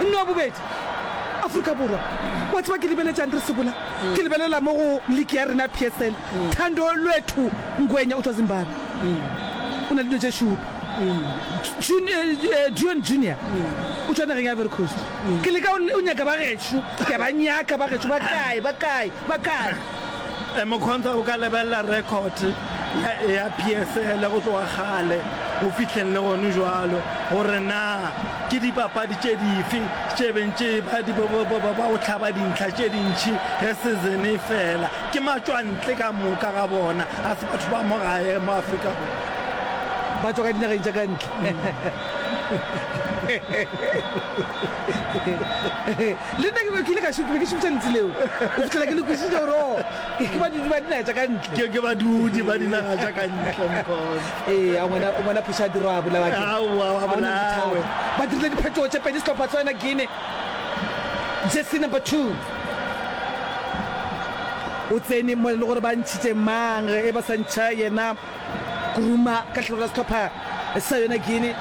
Nna wa bobedi Afrika Borwa. Wa tseba ke lebeletšang re sokola? Ke lebelela mo go league ya rena PSL. Thando Lwethu Ngwenya o tšwa Zimbabwe. O na le dilo tše šupa. Jun, eh, Dion Junior o tšwa nageng ya Ivory Coast. Ke leka o, o nyaka ba gešo. Ke a ba nyaka ba gešo. Ba kae? Ba kae? Ba kae? Mokhontha o ka lebelela rekhote ya PSL go tloga kgale go fihleng le gone jwalo gore na ke dipapadi tše dife tše beng tše ba di ba go hlaba dintlha tše dintši ge season e fela. Ke matšwantle ka moka ga bona, ga se batho ba mo gae mo Afrika Borwa. Ba tšwa ka dinageng tša ka ntle. Le nna ke be ke ile ka šut, be ke šutša lentsi leo go fihlela ke le kwisitše gore o ke badudi ba dinaga tša ka ntle. Ke ke badudi ba dinaga tša ka ntle nkosi. Ee, a ngwana ngwana phoša diro a bolawa ke. Aowa, wa bolawe. Ba dirile diphetogo tše pedi sehlopha sa yona Guinea. Jersey number 2. O tsene mo le gore ba ntšhitše mang e ba sa ntšha yena. Kuruma ka tlhalo la sehlopha sa yona Guinea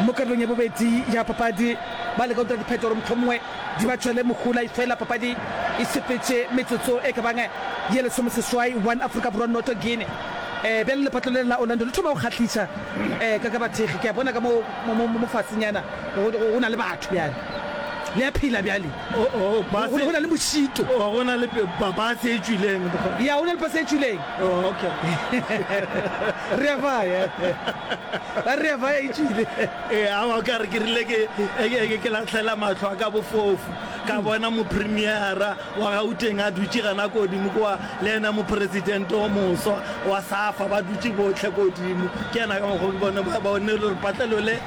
mo karolong ya bobedi ya papadi. Ba leka go dira dipheto gore mohlomongwe di ba tšwele mohola efela papadi e sepetše metsotso e ka bang ye lesome seswai one Afrika Borwa noto Guinea. Um bjale lepatlo le la Orlando le thoma go kgahliša um ka ka bathekgi ke a bona ka mo mo mo mo fasenyana go go na le batho bjale le a phela bjale. O, o, Go go base. na le mošito. O, go na le pe- ba- base e tšwileng. Ya, go na le pase e tšwileng. O, okay. Re a baya. Ba re a baya e tšwile. Ee, awa o ka re ke rile ke e- ke- ke- ke latlhela matlho a ka bofofu ka bona mopremiera wa gauteng a dutše gana kodimo kwa le ena mopresidente o moswa wa safa ba dutše botlhe kodimo ke ena ka mokgwa ke bone ba bone gore patlelo le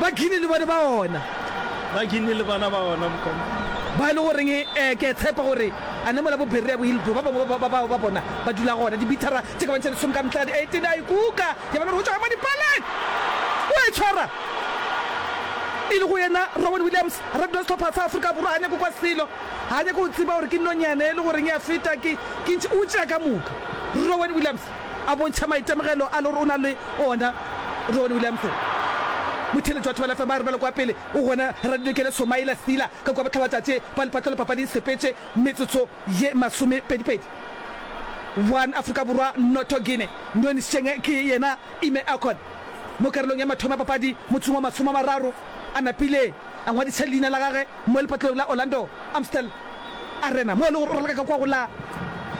ba kini le bone ba ona ba kini le bona ba ona mokoma ba e le goreng um ke tshepa gore a ne mola bophirre ya bohilto ba bangwe ba bao ba bona ba dula gona dibithara tse ka bontšha lesome ka mehla di eighteen a ikuka ya bana go tšwa mo dipaleng o e tshwara e le go yena robert williams radula setlhopha sa aforika borwa a nyako kwa selo Ga a nyake go tseba gore ke nonyane e le goreng ya feta, ke, ke ntšhe, o tšea ka moka. Rowan Williams a bontšha maitemogelo a le gore o na le ona. Rowan Williams, motheeletši wa Thobela FM, a re bjalo kwa pele o gona Radilokele Somaila Sila ka kua bohlabatatshe ba lepatlelo papading Sepetše, metsotso ye masomepedipedi. One Afrika Borwa noto Guinea, Nonisheng ke yena Ime Akon mo karolong ya mathomo ya papadi motseng wa masome a mararo a napile a ngwadiša leina la gage. Mo lepatleong la Orlando Amstel Arena mo e lego gore o raloka ka kwa go la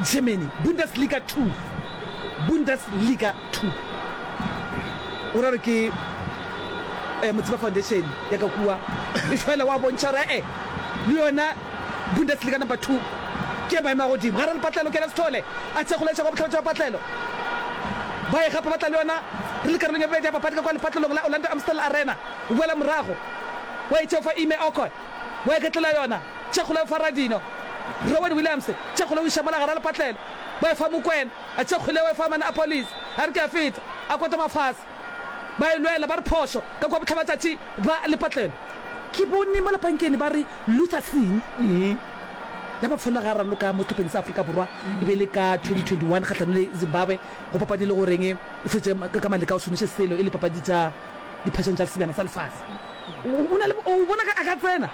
Germany, Bundesliga Two, Bundesliga Two. O ra gore ke eh, Motsiba Foundation ya ka kua e fela wa bontšha gore eh, le yona Bundesliga Number Two ke maemo a godimo. Ga re lepatlelo Kenneth Sithole a tšea kgolaetša kwa botlhabatšo ba patlelo. Ba e gapa ba tla le yona re le karolong ya bobedi ya papadi ka kwa lepatlelong la Orlando Amstel Arena. o boela morago, o a itšeofa Ime Okoy, o eketlela yona, tše kgolo eofa Radino, Rowan Williams, tše kgolo o iša mola gare a lepatlelo, o efa Mokwena, a tše kgoleo efa Man a Police, a re ke a feta, a kotama fase. Ba e lwela, ba re phošo, ka kua bohlabatšatši ba lepatlelo. Ke bone mola pankeni ba re Luther Singh, ya mafelo ga raloka mo sehlopheng sa Afrika Borwa, e be e le ka 2021 kgahlano le Zimbabwe, go papadile go reng e fetše ka maleka o šomiše selo e le papadi tša. diphetšong tša Sebjana sa Lefase. O na le o bona ka a ka tsena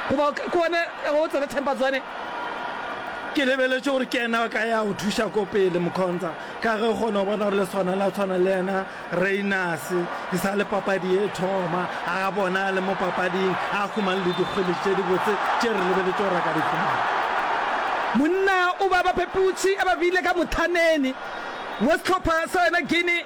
goba ke one o tsena Temba Zwane. Ke lebeletše gore ke ena ka ya go thuša ko pele Mokhonza ka ge kgona go bona gore le swana la tshwana le yena Reinus e sa le papadi e thoma a bona le mo papading a khumang le dikgwele tše dibotse tše re lebeletše gore a ka di khumang monna o ba bapeputši a ba bile ka mothaneni wa sehlopha sa yona Guinea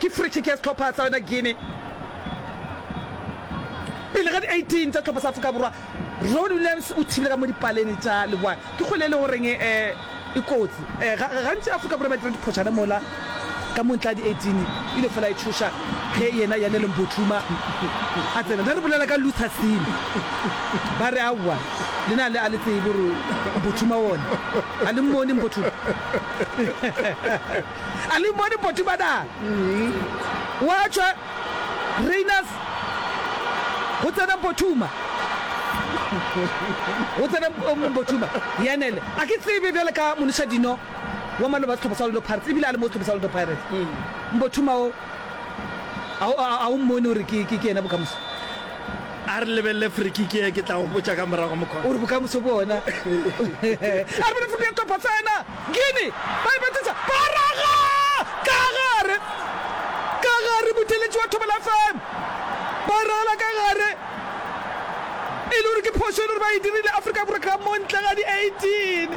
Ke free kick ya sehlopha sa yona Guinea pele ga di 18 tsa sehlopha sa Afrika Borwa. Ronwen Williams o thibile ka mo dipaleng tša leboa. Ke kgole e le go reng e e kotsi. Gantši Afrika Borwa ba dira diphošana mola ka mo ntle ga di 18 e ile fela e tšhoša ge yena Yanele Mpotluma a tsena. Ne re bolela ka Luther Sini ba re aowa lena le a le tsebe gore Mpotluma one a le mmone Mpotluma. A le bone poti ba na? Wa tšwa Rayners go tsena Mpothuma. Go tsena Mpothuma. Yanele. A ke tsebe bjale ka Monisha Dino wa maloba sehlopha sa Orlando Pirates ebile a le mo sehlopha sa Orlando Pirates. Mpothuma o a o mmone gore ke ke yena bokamoso. A re lebelele free kick e ke tla go botša ka morago mokgwa. O re bokamoso bona. A re bone free kick ya Topa tsena. Gini, ba ipetetsa, ba raga ka gare, ka gare, motheeletši wa Thobela FM, ba ragela ka gare, e le gore ke phošo e le gore ba e dirile, Afrika Borwa ka mo ntle ga di 18,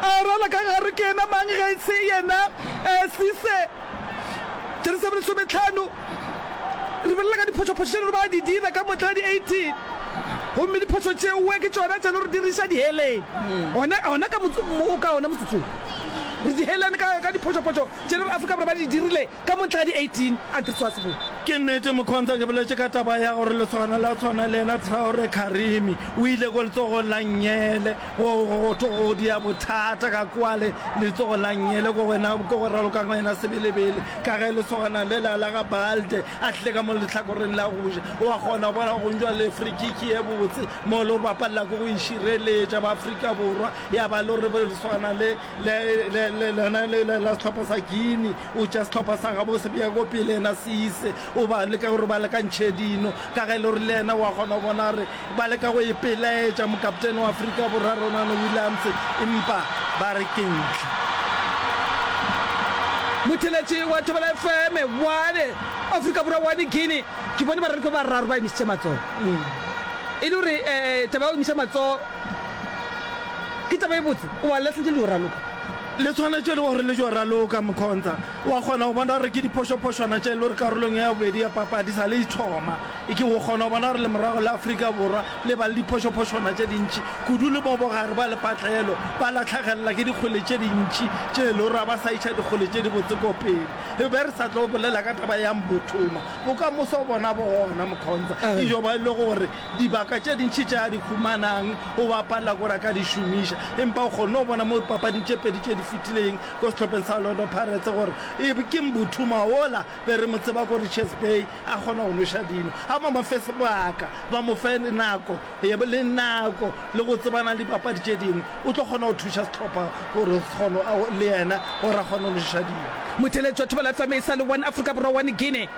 a ragela ka gare, ke yena mang ge e se yena Cisse, jersey ya bo lesometlhano. Lebelela ka diphošophošo tše lero ba di dira ka motla di 18, gomme diphošo tšeoe ke tšona tše lero di re iša diheleng. Gona ka o ka ona motsotso wo, re dihelane ka, ka diphošophošo tše lero Afrika Borwa ba di dirile ka motla di 18, a ke re swa se bone? Ke nnete, Mokhonza, ke boletše ka taba ya gore lesogana la tshwana le yena Traore Karimi, o ile ko letsogong la Nyele. Go, go, go thwe go dia bothata ka kua le, letsogo la ngele go wena, ke go raloka ka wena sebelebele, ka ge lesogana le la, la ga Balde a tlile ka mo lehlakoreng la go ja. O a kgona go bona go ntšwa le free kick ye botse mo lo bapalela ko go e šireletša ba Afrika Borwa, ya ba lo re lesogana le, Le, le, le, lena le, le, la sehlopha sa Guinea, o tšea sehlopha sa gabo se bea ko pele yena seise, o ba leka gore ba lekantšhe dino, ka ge e le gore le yena wa kgona go bona gore ba leka go e pelaetša mokaptene wa Afrika Borwa Ronano Williams, empa ba re ke ntlha. Motheletši wa Thobela FM, One Afrika Borwa One Guinea, ke bone baralokwe ba bararo ba emisitše matsogo, e le gore eh, taba ya go emisa matsogo Ke taba e botse, o a lahlile le yo raloka. Le tshwanetše e le gore le yo raloka, Mkhonza. O a kgona go bona gore ke diphošophošwana tše e le gore karolong ya bobedi ya papadi sa le e thoma. E ke o kgona go bona gore lemorago la Afrika Borwa le ba le diphošophošwana tše dintši kudu le mo bogare ba lepatlelo, ba latlhegelela ke dikgole tše dintši tše e le gore ga ba sa iša dikgole tše dibotse ko pele. E be re sa tlo bolela ka taba ya Mbuthuma. Bokamoso bona bona, Mkhonza, e yo ba e le gore dibaka tše dintši tše a di humanang, o be a palela gore a ka di šomiša. Empa o kgonne go bona mo dipapading tše pedi tše di fetileng ko sehlopheng sa Orlando Pirates gore e ke Mbuthuma wola be re mo tseba ko Richards Bay a kgona go nweša dino. A ba mo fe sebaka, ba mo fe le nako le nako le go tsebana le dibapadi tše dingwe, o tlo kgona go thuša sehlopha gore se kgone le yena gore a kgone go nweša dino. Motheletswa Thobela FM e sa le One Afrika Borwa One Guinea.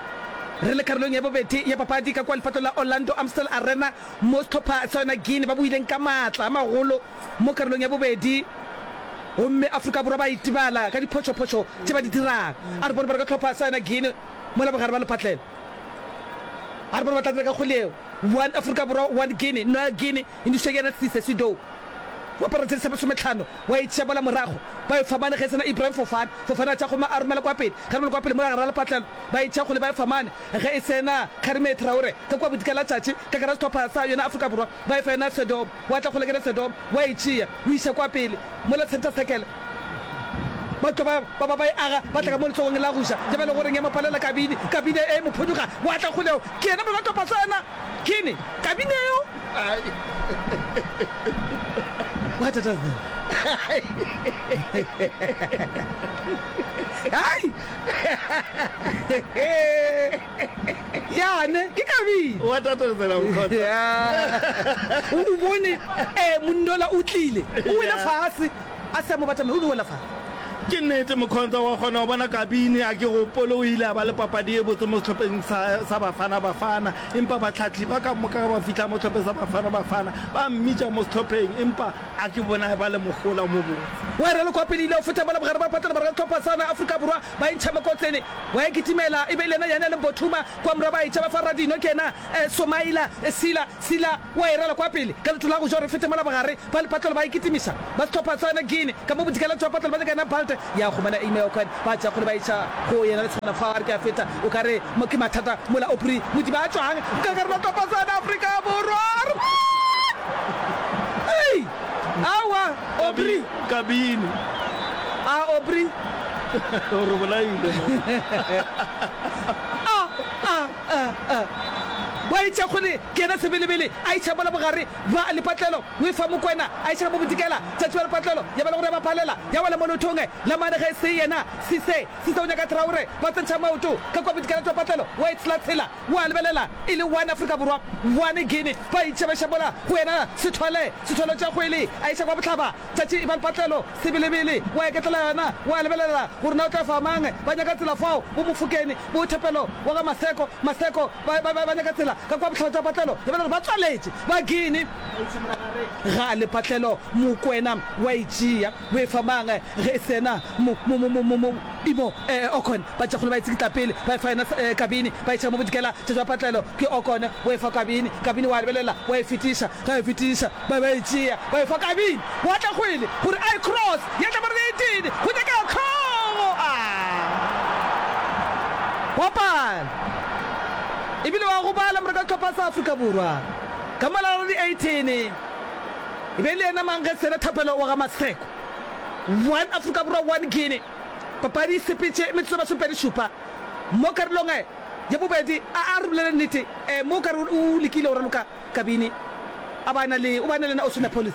Re le karolong ya bobedi ya papadi ka kua lepato la Orlando Amstel Arena mo sehlopha sa yona Guinea ba boileng ka maatla a magolo mo karolong ya bobedi gomme Afrika Borwa ba itebala ka diphošophošo tše ba di dirago. A re bone ba re ka sehlopha sa yona Guinea mola bogare ba lephatlela. A re bone ba tla dira ka kgole yeo. One Afrika Borwa, one Guinea, Noel Guinea, Indiswa ke yena Sise Sidou wa paretšhedi sa masometlhano. Wa e tšea mola morago, ba e famane ge e sena Ibrahim Fofana. Fofana a tšea gomme a romela kwa pele. Kgaremelo kwa pele mo gare ga lepatlelo. Ba e tšea gole ba e famane ge e sena Kgarime Traore. Ka kua bodika la tšatši, ka gare ga sehlopha sa yona Afrika Borwa, ba e fa yona Sedom. Wa tla kgole kere Sedom wa e tšea, o iša kwa pele mola centre circle. Ba tlo ba ba ba ba e aga, ba tla ka mo lehlogong la go ja. Ke bjale gore ya mo palela Kabini. Kabini e mo phuduga. Wa tla kgole, ke yena Molato Pasana. Kini Kabini yo. What does that? Hai! Yane, ke kabile. Wa tatazela mkhotsa. Yeah. U bone eh mundola u tlile. U wela fase. A se mo batla me u wela fase. ke nnete mokhontsha wa kgona go bona kabine a ke gopole o ile a ba le papadi e botse mo setlhopheng sa bafana bafana Empa batlhatli ba ka moka ge ba fihla mo Sehlopheng sa Bafana Bafana, ba mmitša mo sehlopheng empa a ke bonae ba le mohola o mobotse. Boerelo kwa pele e ile ya feta mola bogare ba pata le barega sehlopha sana Afrika Borwa ba e ntšha mokotlene. Wa e kitimela e be e le yena Yane le Mbothuma kwa morwa ba e tša ba fa Radinho ke yena Somaila Sila. Sila wa e rala kwa pele ka leto la go ja gore e fete mola bogare. Ba lepatlelo ba ikitimiša ba sehlopha sa yona Guinea ka mo bodikela tšwa patlelo ba nyaka yona Balte ya humana Ime Okwen ba tšea kgole ba iša go yena le tshwana fa are ke a feta o ka re mo ke mathata mola Opri Modiba a tšwang ka gare sehlopha sa yona Afrika Borwa a re boo ei aowa Opri Kabini a Opri o re bolaile mo a a a a wa itša kgole ke yena sebelebele a iša mola bogare Ba lepatlelo o efa Mokwena a ešega mo Bodikela. Tšatši ba lepatlelo ya ba le gore ya ba phalela ya wela mo leothong la mane ge se yena Sise. Sise o nyaka Traore ba tsentšha maoto ka kua Bodikela tšwa patlelo wa e tshela tshela wa lebelela e le one Afrika Borwa one Guinea ba itšebeša mola go yena Sethole. Sethole o tšea kgwele a iša kwa bohlaba tšatši e ba lepatlelo sebelebele wa eketlela yona wa lebelela gore na o tla efa mang ba nyaka tsela fao bo Mofokeng bo Thapelo wa ga Maseko. Maseko. Ba ba ba nyaka tsela ka kwa bohlatša patlelo lebala gore ba tswaletše ba gini ga le patlelo mokwena wa e tšea o e fa mang ge e sena mo mo mo mo mo imo eh okon ba tšakgolo ba e tsikitla pele ba e fa yena kabini ba e tšea mo bodikela tša patlelo ke okon o e fa kabini kabini wa lebelela wa e fetiša ga e fetiša Ba ba e tšea, ba e fa Kabini, wa tla kgwele, gore a e cross, ya tla ba re be e tene, go nyakega Kgogo! A! Wa pala! E bile wa gobala moreka sehlopha sa Afrika Borwa, ka mola re re Eythene, e be e le yena mang ge sena Thapelo wa ga Maseko. One Afrika Borwa, one Guinea. Papadi e sepetše metsotso e masomepedi-šupa, mo karolong ya bobedi. A-a re bolele nnete, mo o ka re o lekile go raloka. Kabini, a ba a na le, o be a na le yena Oceanopolis.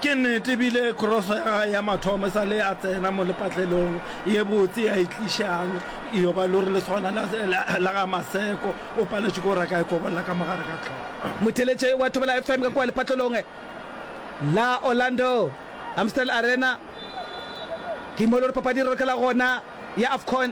Ke nnete, e bile Krose ya gage ya mathomo e sa le a tsena mo lepatlelong ye botse ya e tlišang, yo ba lori le swana la, la, la ga Maseko, o paletšwe ke go reka e kobolla ka mo gare ga tlhogo. Motheeletše wa Thobela FM ka kua lepatlelong la Orlando Amstel Arena, ke mo e le gore papadi e rorokela gona ya Afcon.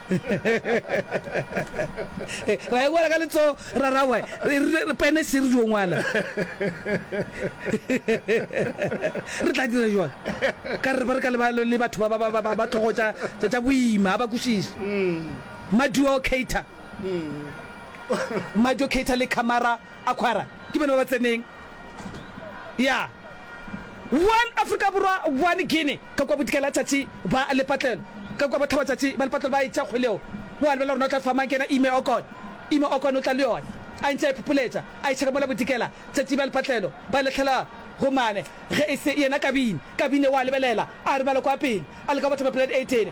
ra e ka letso rarawe re pene se re jo ngwana re tla dira jwang ka re ba re ka le batho ba ba ba ba tlhogo tsa tsa boima ba kušiša maduo cater maduo cater le camera aquara ke bana ba tseneng ya one africa borwa one guinea Ka kua bodikela letšatši ba lepatlelo, ka kua bohlabwa letšatši ba lepatlelo ba etša kgole yeo. O a lebelela gore na o tla fa mang ke yena Ime Okon. Ime Okon o tla le yona, a ntše a iphupuletša, a išega mola bodikela letšatši ba lepatlelo ba lehlela go mane. Ge e se yena Kabini, Kabini o a lebelela, a robala kua pele, a leka go batha mapeladi a etene.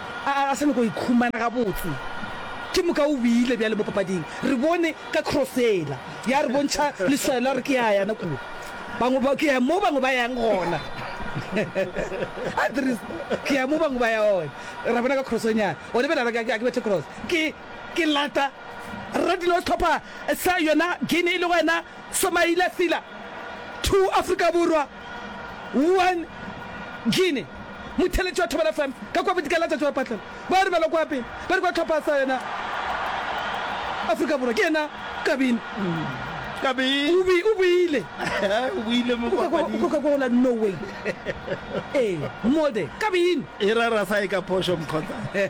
A sa nyako ikhumana gabotse. Ke moka o wile bjale mo papading. Re bone ka cross yela ya re bontšha leswao la gore ke ya yana kua. Bangwe ba, ke ya mo bangwe ba yang gona. A Dries, ke ya mo bangwe ba ya gona. Ra bona ka crossonyana. O lebela gore ga ke bethe cross. Ke, ke lata. Ra dilo sehlopha sa yona Guinea e lego yena Somaila Sila to Afrika Borwa. Wuhan, Guinea, Motheeletši wa Thobela FM ka kua bodika la Tšatši wa Patlelo ba re bjalo kua pele ba re kua tlhopha sa yona Afrika Borwa ke yena Kabini. Kabini o boile o boile mo kwa kwa kwa la no way eh molde Kabini e ra ra sa e ka posho mkhotsa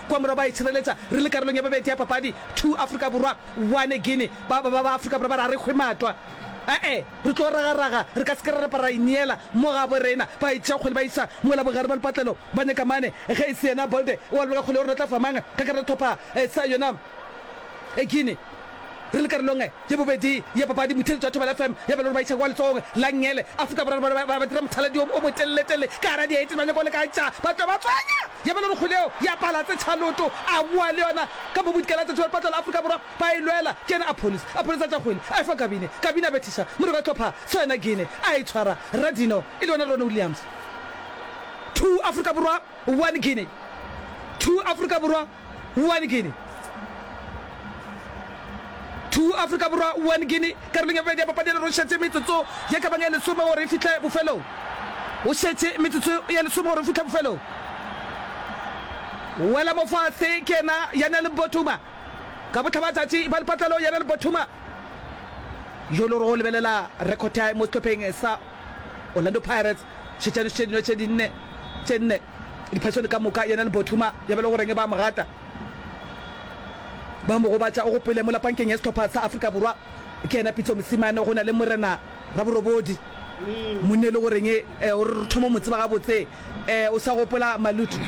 Kua morago ba itshireletsa. Re le karolong ya bobedi ya papadi. Two Afrika Borwa, one Guinea. Ba, ba, ba, ba Afrika Borwa ba re a re hwe matwa. Ae, re tlo ragaraga. Re ka se ke ra napa ra ineela. Mo gabo rena. Ba e tšea kgole ba isa mola bogare bwa lepatlelo. Ba nyaka mane. Ge e se yena Bolde wa lebaka kgole o re o tla fa mang ka karolo thopha sa yona Guinea. Re le karolong e. Ye bobedi ya papadi, motheeletši wa Thobela FM ya Belori Baitsheko wa letsohong la Ngele, Afrika Borwa ba be ba dira mothaladi o motelele-telele ka gare ga diaete ba nyako lekantša ba tloga ba tswanya ya Belori Kgoleo ya Palatse Tšhaloto a boa le yona ka mo bodikela tša Thobela Patlola Afrika Borwa ba e lwela ke yena a pholisa a pholisa tša kgwele a efa Kabine Kabine a bethiša moreko wa tlhopha tso yena Gene a e tshwara Rra Dino e le yona Ronnie Williams two Afrika Borwa one Gene two Afrika Borwa 1 Guinea 2 Afrika Borwa 1 Guinea Karolong ya bobedi ya papadi ena go šetše metsotso ye ka bang ye lesome gore e fihle bofelong Go šetše metsotso ye lesome gore e fihle bofelong Wela mofatshe ke yena ya na le Bothuma ka bohlaba tšatši ba lepatlelo ya na le Bothuma yo le gore go lebelela record ya mo sehlopheng sa Orlando Pirates šetšano tše dingwe tše dinne tše nne Diphasoni ka moka, yena le Bothuma ya ba e le goreng ba a mo gata, ba mo gobatša. O gopole mola pankeng ya sehlopha sa Afrika Borwa ke yena Pitso Mosimane go na le Morena Raborobodi monna e le goreng o re re thoma mo tseba gabotse. O sa gopola Maluti?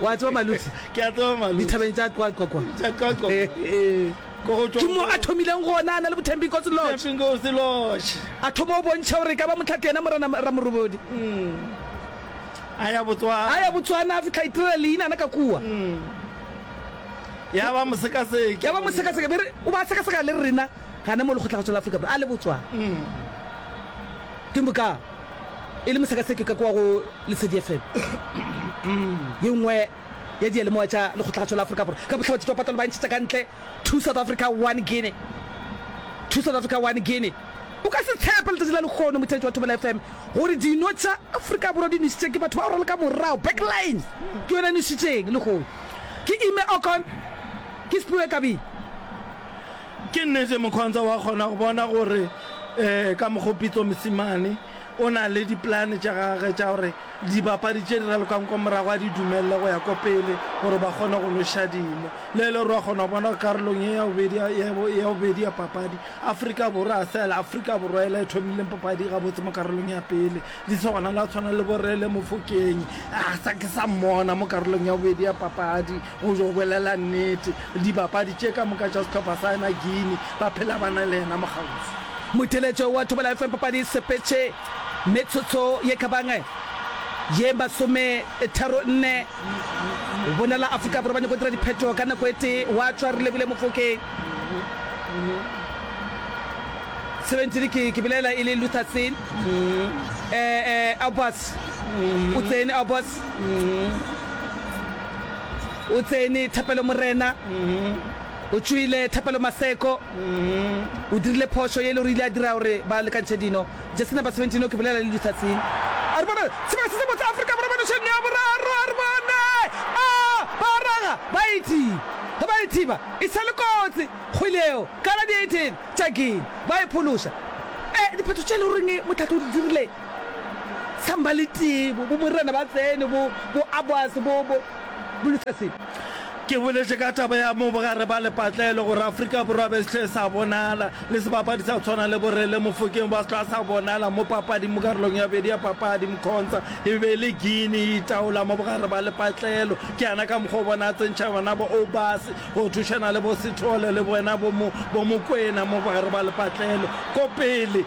Wa tseba Maluti? Ke a tseba Maluti. Dithabeng tša Qwaqwa kwa. Tša Qwaqwa kwa. Ke mo a thomileng go onana le Bothembinkosi Lodge. A thoma go bontšha gore e ka ba mohlapi yena Morena Ramorobodi. A ya Botswana a fihla a itirela leinana ka kua. Ya ba mosekaseki. Be re o ba sekaseka le rena gana mo Lekgotlakgatsho la Afrika Borwa a le Botswana. Ke mo ka e le mosekaseki ka kua go Lesedi FM. Ye nngwe. ya diyalemoya tša Lekgotlakgatsho la Afrika Borwa ka bohla ba ditšwapatlalo ba ntšhetša ka ntle Two South Africa, One Guinea. Two South Africa, One Guinea. O ka se tshepe letšatši la lehono, motheetši wa Thobela FM, gore dino tša Afrika Borwa di nwešitše ke batho ba go raloka morago, back line, ke yona e nwešitšeng lehono. Ke Ime Okon, ke Sphiwe Kabini. Ke nnete Mokhonza wa kgona go bona gore ka mokgo Pitso Mosimane O na le dipolane tša gagwe tša gore dibapadi tše di ralokang kwa morago a di dumelele go ya kwa pele gore ba kgone go noša dino. Le e le gore wa kgona go bona gore karolong ye ya bobedi ya bobedi ya papadi, Afrika Borwa ga se yela Afrika Borwa yela e thomileng papadi gabotse mo karolong ya pele. Di se gona le ba tshwana le bo Rele Mofokeng, ga sa ke sa mmona mo karolong ya bobedi ya papadi. Go yo bolela nnete, dibapadi tše ka moka tša sehlopha sa yena Guinea ba phela ba na le yena mokgauswi. Motheletse wa Thobela FM Papadi Sepetše metsotso ye ka bang ye masometharo-nne Lebone la Afrika Borwa ba nyaka go dira diphetho ka nako e tee gwa tšwa Relebohile Mofokeng 17 ke ke belaela e le Luther Tsin eh eh Aubas o tsene Aubas O tsene Thapelo Morena, o tšoile Thapelo Maseko, o dirile phošo ye e le gore e ile ya dira gore ba lekantšhe dino. Jesse number 17 o ke bolela le Luther Tsing. A re bona sebaka se se botse Afrika Borwa panošeng ya boraro, a re bone a ba raga ba e thiba. Ge ba e thiba e sa le kotsi kgwele yeo ka la di 18 tša Guinea ba e phološa. E, diphetho tše e le goreng motlhatlo o di dirile Samba le tee, bo, bo morena ba tsene, bo, bo Aboase, bo, bo, bo Lutherse. Ke boletše ka taba ya mo bogare ba lepatlelo, gore Afrika Borwa be se hle sa bonala, le sebapadi sa go tshwana le Borele Mofokeng ba se hlwa sa bonala mo papading, mo karolong ya bobedi ya papadi, Mkhonza e be e le Guinea e itaola mo bogare ba lepatlelo. Ke yana ka mokgwa o bona a tsentšha bona bo Obase go thušana le bo Sithole le bona bo, bo Mokwena mo bogare ba lepatlelo. Ko pele!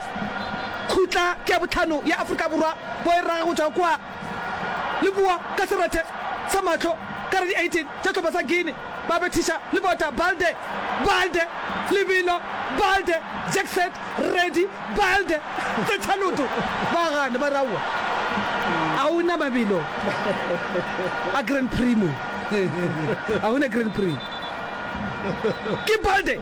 Khutla ke ya bohlano ya Afrika Borwa bao e raga go tšwa kua le boa ka serethe sa mahlo ka re di 18 tša sehlopha sa Guinea ba bethiša le bota Balde, Balde, Lebelo, Balde, Jackset, Reddy, Balde, Tsetshaloto ba gana ba re aowa ga go na mabelo a Grand Prix mo, ga go na Grand Prix ke Balde.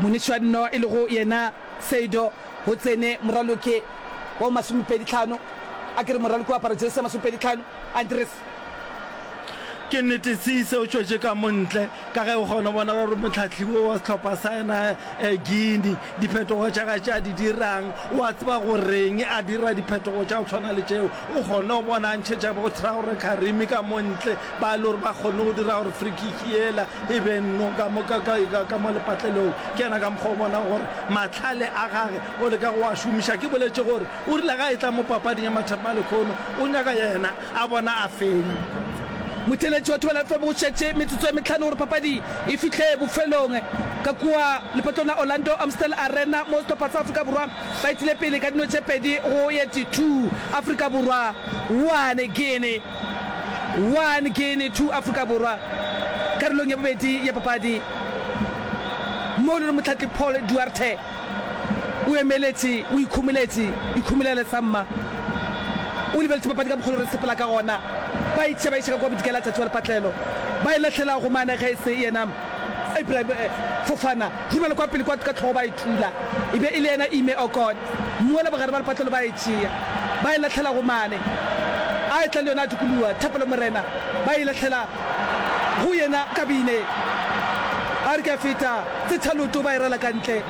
Monichwanno e lego yena Seido go tsene moraloki wa bo masomepedi tlhano, a ke re moraloki wa aparo jesi ya masomepedi tlhano, Andries. Ke nnete Cisse o tšwetše ka mo ntle ka ge o kgona go bona gore mohlahli wo wa sehlopha sa yena Guinea diphetogo tša gae tše a di dirang o a tseba go reng, a dira diphetogo tša go tshwana le tšeo. O kgonne go bona a ntšhetša bothra gore Karimi ka mo ntle ba e le gore ba kgonne go dira gore free kick yela e be nno ka mo ka ka ka ka mo lepatlelong ke yena ka mokgwa o bona gore matlhale a gage o leka go a šomiša ke boletše gore o rile ga e tla mo papading ya mathapama lekhono o nyaka yena a bona a feng Motheeletši wa thobela tlobo o šetše metsotso e metlhano gore papadi e fihle bofelong ka kua lepatlong la Orlando Amstel Arena mo sehlopha sa Afrika Borwa ba itile pele ka dino tše pedi go ye ti two Afrika Borwa one Guinea one Guinea two Afrika Borwa karolong ya bobedi ya papadi mo e le gore motlhatli Paul Duarte o emeletše o ikhumoletše ikhumolela sa mma o lebeletše papadi ka mokgolo re sepela ka gona ba itše ba iša ka kwa bodikela tšatši wa lepatlelo ba e lahlela go mane ge e se yena Abraham eh, Fofana, romela kwa pele kwa ka tlhogo ba e thula. E be e le yena Ime oh God, mmu ola bogare ba lepatlelo ba e tšea, ba e lahlela go mane. A etla le yona a dikoloa, Thapelo Morena, ba e lahlela go yena kabine. A re ke a feta, tse thaloto ba e rala ka ntle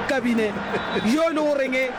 kabine. Yo e le go reng?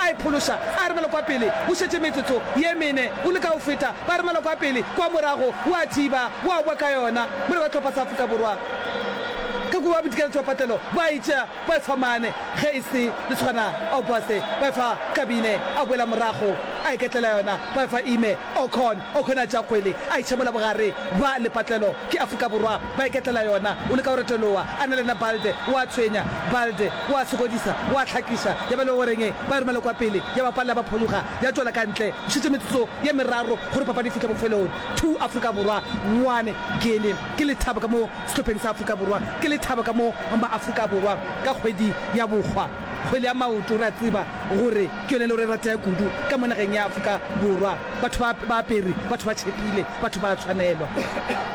A e phološa, a arabela kwa pele, o šetše metsotso ye mene o leka go feta, ba arabela kwa pele, kwa morago o a thiba, o a boa ka yona, mola ba tlhopha sa Afrika Borwa ka kua ba bodikela tšwapatelo, ba e tšea, ba e fa mane, ge e se le tshwana, Obase, ba e fa Kabine, a boela morago, a iketlela yona, ba e fa Ime. Okon o kgona a tšea kgwele a e tšhemola bogare bwa lepatlelo. Ke Afrika Borwa ba iketlela yona. O leka go retoloa a na le yona Balde o a tshwenya. Balde o a sokodisa, o a hlakiša ya ba le go reng ba e romele kwa pele ya ba palela ba phologa ya tšwela ka ntle. Go šetše metsotso ye meraro gore papadi e fihle bofelong. Two Afrika Borwa, one Guinea. Ke lethabo ka mo sehlopheng sa Afrika Borwa. Ke lethabo ka mo ba Afrika Borwa ka kgwedi ya bokgwa. Kgwele ya maoto, re a tseba gore ke yone e le gore e ratega kudu ka mo nageng ya Afrika Borwa. Batho ba ba apere, batho ba tšhepile, batho ba a tshwanelwa.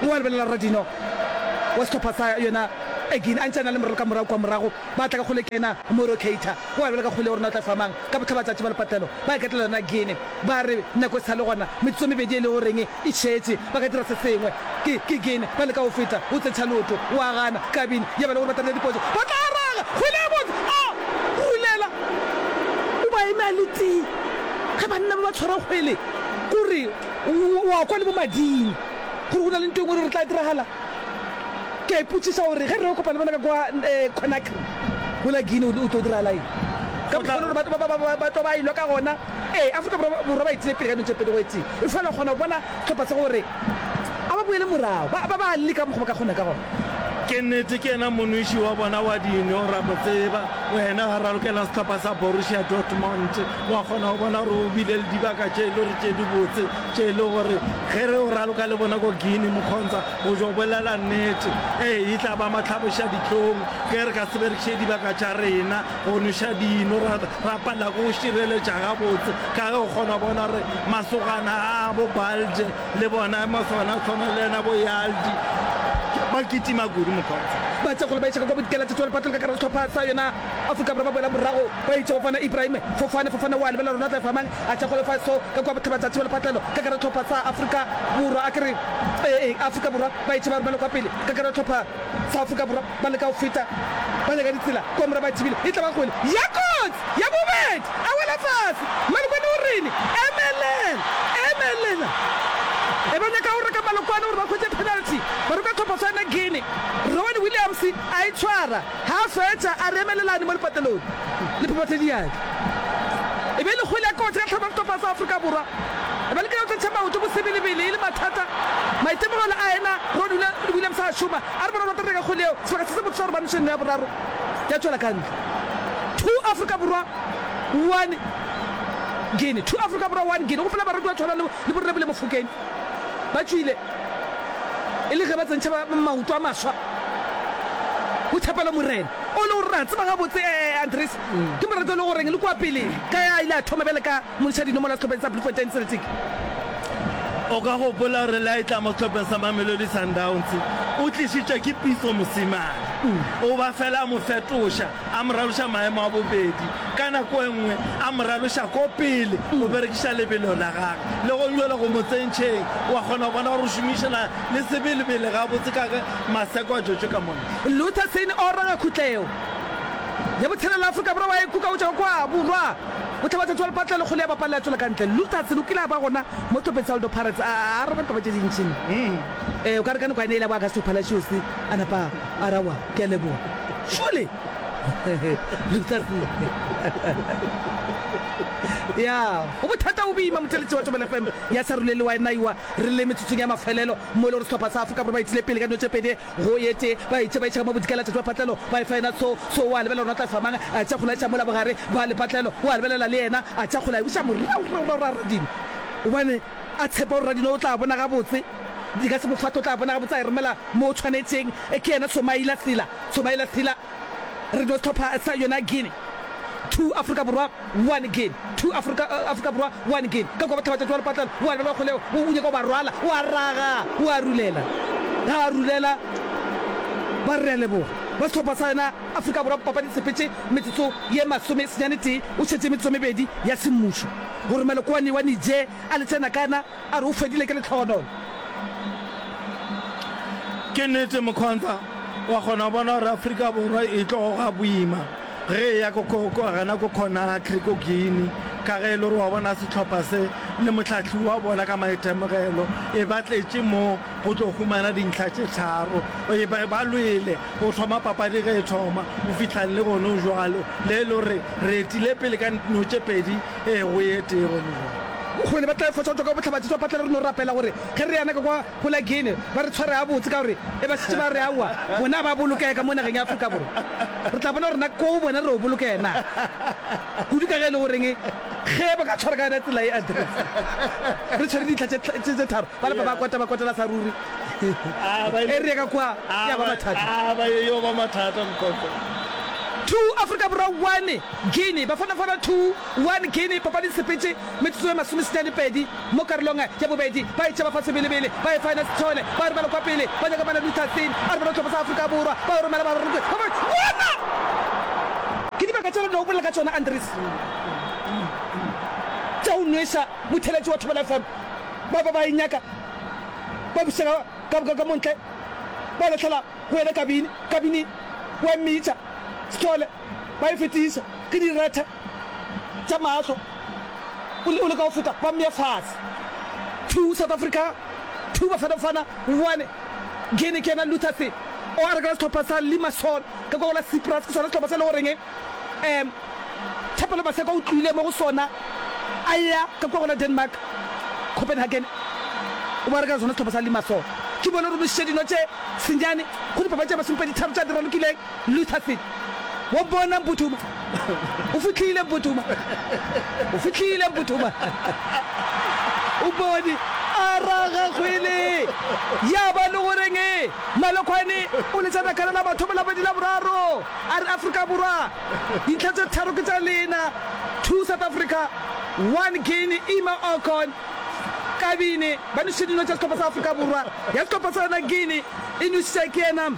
Wa lebelela Rra Dino wa sehlopha sa yona Egin a ntse a na le morero ka morago kwa morago, ba tla ka kgwele ke ena Mauro Keita. Wa lebelela ka kgwele ya rona o tla fa mang? Ka botlhabatšatši ba lepatlelo ba iketlela yona Guinea, ba re nako e sa le gona, metsotso e mebedi e le goreng E šetše ba ka dira se sengwe. Ke, ke Gene. Ba leka go feta, go tsetša leoto. O a gana. Kabin, ya ba le gore ba tarela dipotso. Ba tla araga! Kgwele ya botse! A! Khulela! O ba eme a le tee. Ge banna ba ba tshwara kgwele, ko re, o, o a kwa le bo mading, gore go na le nto engwe e lego re tla diragala. Ke a ipotšiša gore ge re yo kopana le bona ka kwa, eh, Conakry, mola Gene, go tlo diragala eng? Ka mokgwa wo e lego gore ba, ba, ba, ba, ba tlo ba e lwa ka gona. Ee, Afrika Borwa ba etile pele ka dilo tše pedi go etse, efela o kgona go bona sehlopha se gore a ba boele morago, ba ba a leka ka mokgwa ba ka kgona ka gona. Ke nnete, ke yena monweši wa bona wa dino, ra mo tseba. Wena ga ralokela sehlopha sa Borussia Dortmund, wa kgona go bona gore o bile le dibaka tše e le gore tše dibotse, tše e le gore ge re o raloka le bona ko Guinea, Mokgontsa, o jo bolela nnete. Ee, e tla ba matlhabošadihlong ge re ka se berekiše dibaka tša rena. go nweša dino ra, ra palela go šireletša gabotse ka ge o kgona bona gore masogana a bo balde le bona masogana a tshwana le yena bo yaldi ba kitima kudu mokgotsa ba tse kgolo ba ešega kwa bodikela tse tswale patlong ka kara sehlopha sa yona afrika borwa ba boela morago ba itše go fana ibrahime fofane fofane wa lebela rona tla efamang a tša kgolo fa so ka kwa botheba tša thibelo patlelo ka kara sehlopha sa afrika borwa a ke re ee afrika borwa ba itše ba romela kwa pele ka kara sehlopha sa afrika borwa ba leka go feta ba nyaka ditsela kua mora ba thibile e tla ba kgole ya kotsi ya bobedi a wela fase malokwane o rile emelela emelela e ba nyaka go reka malokwane gore ba khwetše penalty ba roka tlhophoso ya ne guine rowan williams a e tshwara ga a fetša a re emelelane mo lepatelong le phephathe diatla e be e le kgole ya kotsi ka tlhamo ya setlhopha sa afrika borwa e ba lekile go tletša maoto bosebelebele e le mathata maitemogelo a ena rowan williams a šoma A re borwa ba tla reka kgole yeo sebaka se se botse sa gore ba ntshe nno ya boraro ya tšwela ka ntle. Two Afrika Borwa, One Guinea. Two Afrika Borwa, One Guinea. Go fela barwedi ba tshwana le le bo Rrebele Mofokeng ba tšwile e le ge ba tsentšha ba maoto a maswa go Thapelo Morena o le gore re a tseba gabotse Andries ke morato e le goreng le kua pele ka ya a ile a thoma bjale ka Montšha dinomola sehlopheng sa Bloemfontein Celtic. O ka gopola gore le a etla mo sehlopheng sa Mamelodi Sundowns, o tlišitšwa ke Pitso Mosimane. O ba fela a mo fetoša, a mo raloša maemo a bobedi, ka nako e nngwe a mo raloša ko pele go berekiša lebelo la gagwe. Le gong bjale go mo tsentšheng, o a kgona go bona gore o šomišana le sebelebele gabotse ka ge maseko a tšwetšwe ka mono. Luther Seine o raga khutleo ya botshelela Afrika Borwa wa e kukaotša go kwa borwa. Go hlaba tšatši wa lepatla lekgolo ya bapalla ya tšwela ka ntle. Lutherson o kile a ba gona mo Topetsaldo Pirates a araba ditaba tše dintši. Ee, o ka re ka nako ya ne e la bo Augusto Palacios a napa a ra wa, ke a leboga. Šole! Lutherson! Ya, go bothata go boima motheletši wa Tšobelo FM ya sa rulele wa e naiwa re le metsotsong ya mafelelo mo e le gore sehlopha sa Afrika Borwa ba itile pele ka dino tše pedi Go ye tee, ba itše ba e tšhaka mo bodikela tate wa patlelo, ba e fa yena tso, tso o a lebelela gore na tla e fa mang, a tšea kgola e tšea mola bogare ba lepatlelo, o a lebelela le yena, a tšea kgola a e buša morago, morago, morago, ra Radini, gobane a tshepa gore Radini o tla bona gabotse, e ka se mo fate, o tla bona gabotse, a e romela mo o tshwanetšeng, ke yena Tshomaila Sila, Tshomaila Sila. Re no hlopha sa yona Guinea two Afrika Borwa one Guinea two Afrika Afrika Borwa one Guinea ka kwa bohlabatša tšwa lepatlelo wa lebala wa kgolego o nyaka ba rwala wa raga wa rulela ga wa rulela ba re leboga ba sehlopha sa yona Afrika Borwa papadi sepetše metsotso ye masome senyane tee o šetše metsotso mebedi ya semmušo gore malokwane wa nije a le tšena kana A re o fedile ke lehlogonolo. Ke nnete Mokhontha, wa kgona go bona gore Afrika Borwa e tlo go ga boima ge e ya gana ko Conakry ko Guinea ka ge e le gore wa bona sehlopha se le mohlahli wa bona ka maitemogelo e ba tletše mo go tlo humana dintlha tše tharo. E ba ba lwele go thoma papadi ge e thoma go fihlang le gone jwalo le e le gore re etile pele ka no tše pedi Ee, go ye tee gone bjale. Kgole ba tla efoša go tšwa ka bohlabatši. Swa phatla re no rapela gore ge re yana ka kwa go la Guinea ba re tshware gabotse ka gore e ba šetše ba re aowa bona ba bolokega ka mo nageng ya Afrika Borwa. Re tla bona gore na ko go bona re yo bolokega na kudu ka ge e le goreng ge ba ka tshwara ka yona tsela ye a diretse re tshwere ditlha tše tharo ba lapa ba kwata ba kwatela sa ruri e re ya ka kwa ya ba mathata. Aba e yo ba mathata mokoko. Two Afrika Borwa one. Guinea, Bafonofono two, one Guinea, Papadi Sepetše metsotso e masomesenyane-pedi mo karolong ya bobedi, ba etša ba fa sebelebele ba Efinus Tshone ba re ba le kwa pele, ba nyaka Mane Luther Thing a re ba no hlophisa Afrika Borwa, ba yo romela ba rokwe ba ba bona! Ke dibaka tše re no bolela ka tšona, Andries, tša go nweša motheeletši wa Thobela FM. Ba be ba e nyaka, ba bušega ka ka montle, ba lahlela go yena kabini, kabini wa mmitša Sithole. ba e fetiša ke direthe tša mahlo o le ka go feta ba mmea fase. Two South Africa Two Bafana Bafana One Guinea ke yena Luther se o a rekela sehlopha sa Limassol ka kwa go la Cyprus ke sona sehlopha se e le goreng um Thapelo Maseko o tluile mo go sona a ya ka kwa go la Denmark Copenhagen o ba rekela sona sehlopha sa Limassol ke bone gore mošiša dino tše senyane go dipapadi tša masomepedi tharo tša di ralokileng Luther Fit, Wa bona Mputhuma? O fihlile Mputhuma? O fihlile Mputhuma? O bone a raga kgwele, ya ba le go reng? Malokhwane o letša nakala la mathomo, la bobedi, la boraro, a re, Afrika Borwa, dintlha tše tharo ke tša lena, two South Africa, one Guinea, ima Okon, Kabini, ba nwešitše dino tša sehlopha sa Afrika Borwa, ya sehlopha sa yona Guinea e nwešitša ke yena.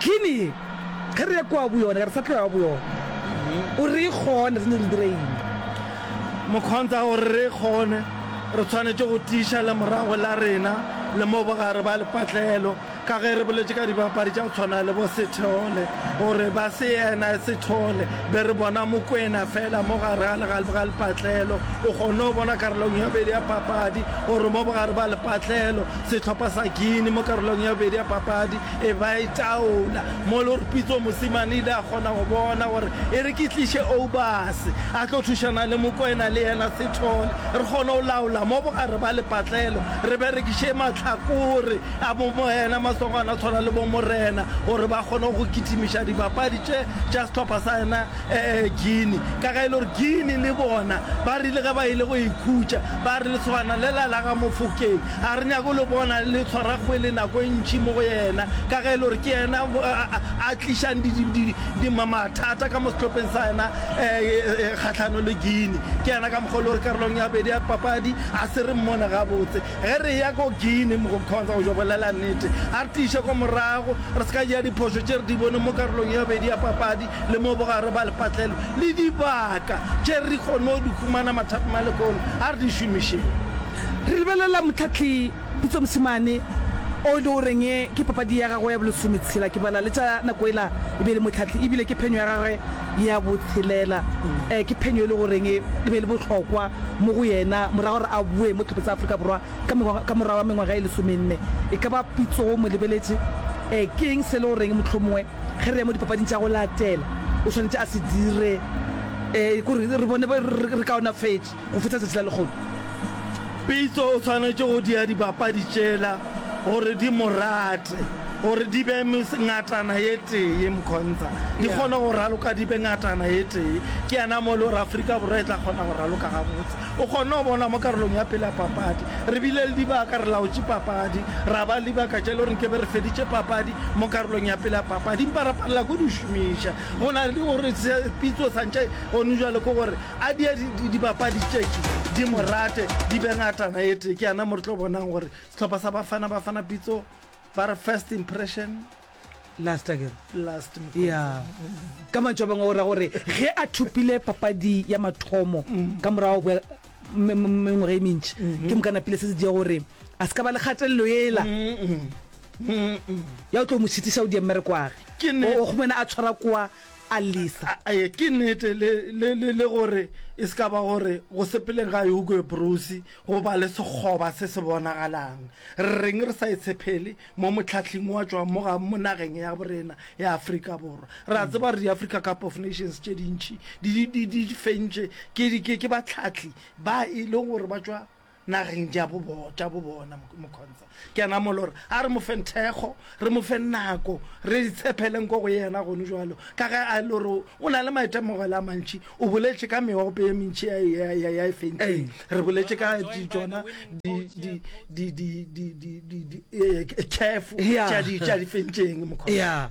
Gini ye, ge re ya kua go yona, re sa tlo ya go yona. O re e kgone, re santse re dira eng? Mokhonta o re re e kgone, re tshwanetše go tiiša lemorago la rena le mo bogare ba lepatlelo. Ka ge re boletše ka dibapadi tša go tshwana le bo Sithole, gore ba se yena Sithole, be re bona Mokwena fela mo gare ga legale ga lepatlelo. O kgonne go bona karolong ya bobedi ya papadi gore mo bogare ba lepatlelo, Sehlopha sa Guinea mo karolong ya bobedi ya papadi e ba e taola mo le gore Pitso Mosimane ile a kgona go bona gore e re ke tliše Obas a tlo thušana le Mokoena le yena Sithole re kgone go laola mo bogare ba lepatlelo re berekiše mahlakore a bo moena masogana tshwana le bo Morena gore ba kgone go kitimiša dibapadi tše tša sehlopha sa yena Guinea ka ge e le gore Guinea le bona ba rile ge ba ile go ikhutša ba re lesogana le la la ga Mofokeng Ga re nyake go le bona le tshwara kgwele nako e ntši mo go yena, ka ge e le gore ke yena a tlišang mathata ka mo sehlopheng sa yena kgahlanong le Guinea. Ke yena ka mokgwa o e le gore karolong ya bobedi ya papadi ga se re mmone gabotse. Ge re eya ko Guinea, Mkhonza o jo bolela nnete, a re tiiše ko morago, re se ka dira diphošo tše re di boneng mo karolong ya bobedi ya papadi le mo bogare ba lepatlelo. Le dibaka tše re kgonne go di humana mathapama le kolo, a re di šomišeng. Re lebelela Motlhatli Pitso Mosimane o e le goreng ke papadi ya gagwe ya bolesometshela. Ke bala le tša nako ela e be e le Motlhatli ebile ke phenyo ya gagwe ya botshelela. Ke phenyo e le goreng e be e le bohlokwa mo go yena morago gore a boe mo Tlhopho tsa Afrika Borwa ka morago ga mengwaga e lesomenne. E ka ba Pitso o mo lebeletše ke eng se e le goreng mohlomongwe ge re ya mo dipapading tša go latela o swanetše a se dire gore re bone re kaonafetše? Go fihla tšatši la lekgolo, Pitso o swanetše go dia dibapadi tšela gore di mo rate, gore di be ngatana ye tee, Mkhonza, di kgone go raloka di be ngatana ye tee. Ke yena mo e le gore Afrika Borwa e tla kgona go raloka gabotse. O kgonne go bona mo karolong ya pele ya papadi, re bile le dibaka, re laotše papadi, ra ba le dibaka tše e le gore nke be re feditše papadi mo karolong ya pele ya papadi empa ra palela ko di šomiša. Go na le gore Pitso sa ntše gone bjale ke gore A di dibapadi tšetše di mo rate di be ngatana e tee ke yana mo re tlo bonang gore sehlopha sa bafana bafana pitso ba re first impression last again last ya ka mantšho a bangwe o ra gore ge a thopile papadi ya mathomo mm. ka morago go mengwaga e mentši mm-hmm. ke mokana pele se se dia gore a se ka ba le kgatelelo ela ya o tlo mo šitiša o di mmerekwage o gomena a tshwara kwa a llisa. Ee, ke nnete, le, le, le, le gore e se ka ba gore go sepeleng ga Hugo Broos go ba le sekgoba se se bonagalang. Rreng re sa e tshephele mo mohlahling wa tšwang mo ga mo nageng ya borena ya Afrika Borwa? Re a tseba gore di-Africa Cup of Nations tše dintši di, di, di, di fentše ke, ke, ke bahlahli ba e leng gore ba tšwa nageng ja bo bona. Mokhonsa ke yena a mo lore a re mo feng thekgo, re mo feng nako, re itshepheleng ko go yena gone jalo, ka ge a lore o na le maitemogelo a mantši. O boletše ka meope ye mentši ya e fentseng, re boletše ka tsona dikhefo tša di fentseng. Mokhonsa.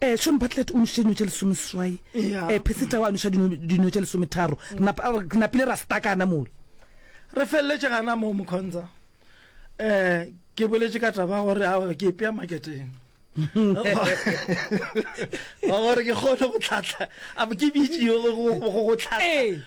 Eh, Shawn Bartlett o nošitše dino tše lesomeseswai. Eya. Eh, Percy Tau a noša dino, dino tše lesometharo. Re napa, re napile ra stakana mole. Re felletše gana moo, Mokhonza. Eh, ke boletše ka taba ya gore a ke ipea maketeng. Wa gore ke kgone go tlhahla, a ke bitšiwe go, go, go, go tlhahla. Ee.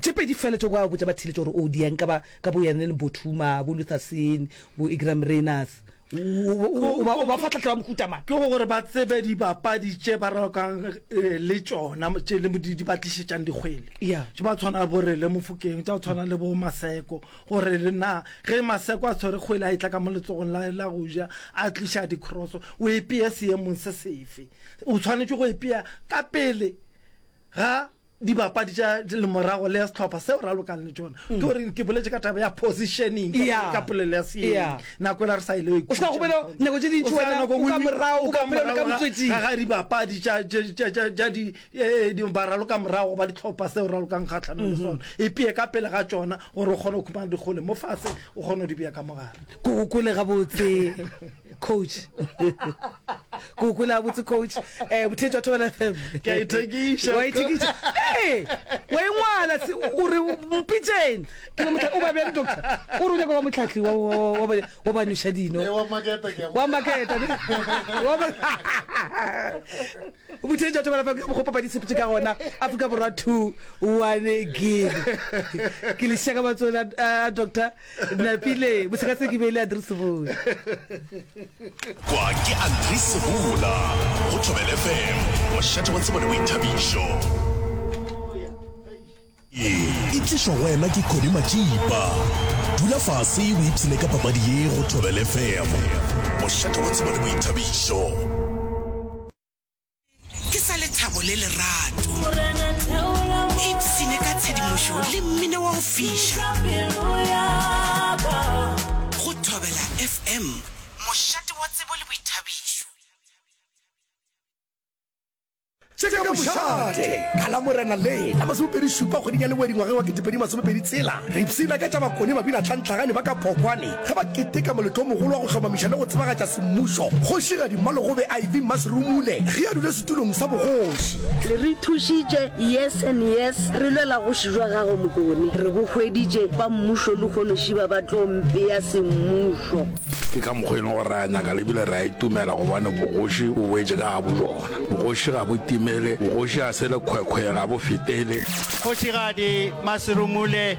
Tše pedi fela tšeo ba botša ba theeletša gore o di yang ka ba ka bo yane le Bothuma, bo Lutherson, bo Igram Rainers. O ba o ba fa tlhahlo ya mohuta mang? Ke go gore ba tsebe dibapadi tše ba rakang le tšona tše le di ba tlišetšang dikgwele. Yeah. Tše ba tshwana bo Rele Mofokeng, tša go tshwana le bo Maseko gore le na ge Maseko a tshwere kgwele a e tla ka mo letsogong la la go ja a tliša dikroso o e peye seemong se sefe. O tshwanetše go e pea ka pele ga dibapadi tša lemorago le ya setlhopha seo ra lokang le tšona ke gore ke boletse ka taba ya positioning ka- Yeah. ka polelo ya seeng Yeah. nako ela re sa ile O sa gobela nako tše dintši wena, o ka morago, o ka morago ka motswetsing. ga dibapadi tša- tša- tša- tša- tša di- eh, di- ba raloka morago ba ditlhopha seo ralokang kgatlhanong le sona e peye ka pele ga tšona gore o kgone go khumana dikgole mo fatshe o kgone go di beya ka mogare Ke gokole gabotse. coach ke o kwela botse coach um bothe jwa thobela fm ke a ithekiša wa ithekiša ee wa engwala o re mpitseng ke motla o ba bjang doctor o re o nyaka wa motlhatlhi wa ba noša dino eh, wa maketa bothe jwa thobela fm go papa disepetse ka gona afrika borwa two one gig ke lešaka batsola eh, doctor napile boseka se ke beile adrese bole kwa ke adrese bula go thobele fm mošate wa tsebo le boithabišo e tlišwa go wena ke kodi matsipa dula fase o ipshine ka papadi ye go thobele fm mošate wa tsebo le boithabišo Ke sa lethabo le lerato. Ipshine ka tshedimošo le mmino wa go fiša. Go Thobela FM, mošate wa tsebo le boithabišo. Tšeka Mošate ka Lamorena le la masomepedi šupa kgweding ya Leboa dingwageng wa ketepedi masomepedi tshela. Re ipshina ka tša Makone Mabina Tlhantlhagane ba ka Phokwane. Ge ba keteka moletlo o mogolo wa go hlomamiša le go tsebagatša semmušo, Kgošigadi Mmalogobe IV Mmasirumule ge a dule setulong sa bogoši. Le re thušitše yes and yes, re lwela goši jwa gago Mokone, re go hweditše ba mmušo lehono šiba ba tlo mpea semmušo. Ke ka mokgo e leng gore re a nyaka le ebile re a itumela gobane bogoši bo boetše ka ga bojona. Bogoši ga bo timele, bogoši ga se lekgwekhwe, ga bo fetele. Kgošigadi Mmasirumule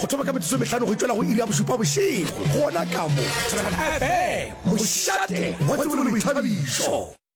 go thoma ka metsotso e mehlano go itšwela go iri ya bošupa bošego gona ka mo Thobela FM, mošate wa tsebo le boithabišo.